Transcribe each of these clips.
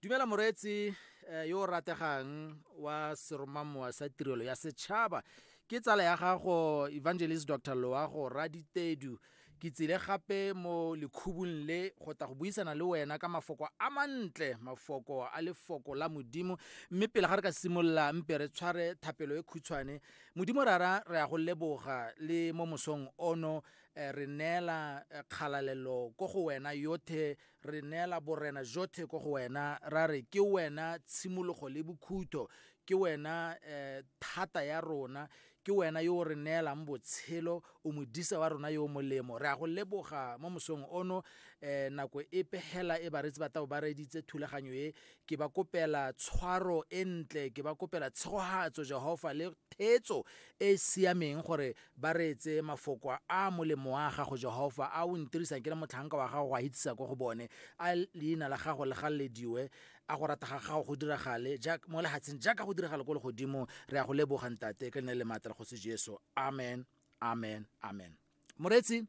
dumela moreetsi eh, yo o rategang wa seromamowa sa tirelo ya setšhaba ke tsala ya gago evangelist dr loago raditedu ke tsile gape mo lekhubung le go tla go buisana le wena ka mafoko a mantle mafoko a lefoko la modimo mme pele ga re ka simolola mpe re tshware thapelo e khutshwane modimo rara re ya go leboga le mo mosong ono eh, re neela eh, kgalalelo ko go wena yothe re neela borena jotlhe ko go wena ra re ke wena tshimologo le bokhutho ke wena eh, thata ya rona ke wena yo o re neelang botshelo o modisa wa rona yo o molemo re a go leboga mo mosong ono eh, nako e pegela e baretsi ba tabo ba reditse thulaganyo e ke ba kopela tshwaro e ntle ke ba kopela tshegogatso jehofa le thetso e e siameng gore ba reetse mafoko a molemo wa gago jehofa a o ntirisang ke le motlhanka wa gago go a itsisa ko go bone a leina la gago le gallediwe a go rata ga gago go diragale mo lehatsheng jaaka go diragale ko legodimo re ya go lebogang tate ka leina le maatla le kgosi jesu amen amen amen moretsi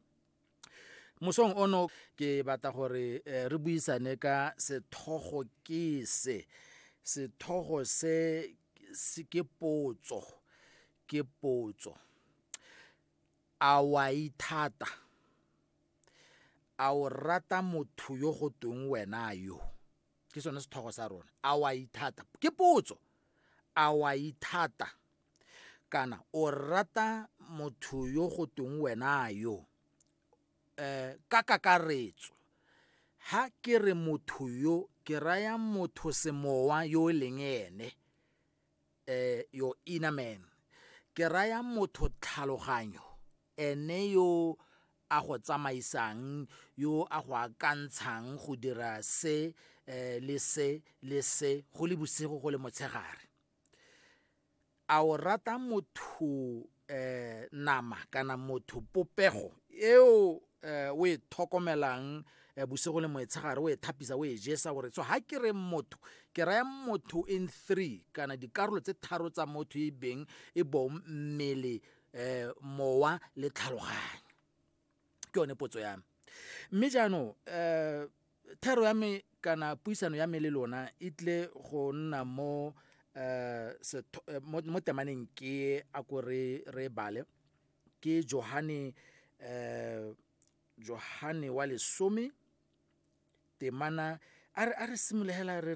mosong ono ke batla gore eh, re buisane ka sethogo ke se sethogo se ke potso ke potso a wa ithata a o rata motho yo go tweng wena yo ke sone sethogo sa rona a wa ithata ke potso a wa ithata kana o rata motho yo go teng wena yo eh ka kakaretso ha ke re motho yo ke raya motho semowa yo e leng ene eh your inner man ke raya motho tlhaloganyo Ene yo a go tsamaisang, yo a go akantshang go dira se eh, le se le se go le bosigo go le motshegare. A o rata motho eh, nama kana motho popego eo eh, o e tlhokomelang eh, bosigo le moetshegare o e thapisa o e jesa gore so ha ke re motho ke raya motho in three kana dikarolo tse tharo tsa motho e beng e bong mmele eh mowa le tlhaloganyo ke yone potso ya me mme jaanong um thero ya me kana puisano ya me le lona e tle go nna mo eh, eh mo temaneng ke a ko re re bale ke Johane eh Johane wa lesome temana a re a re simologela re re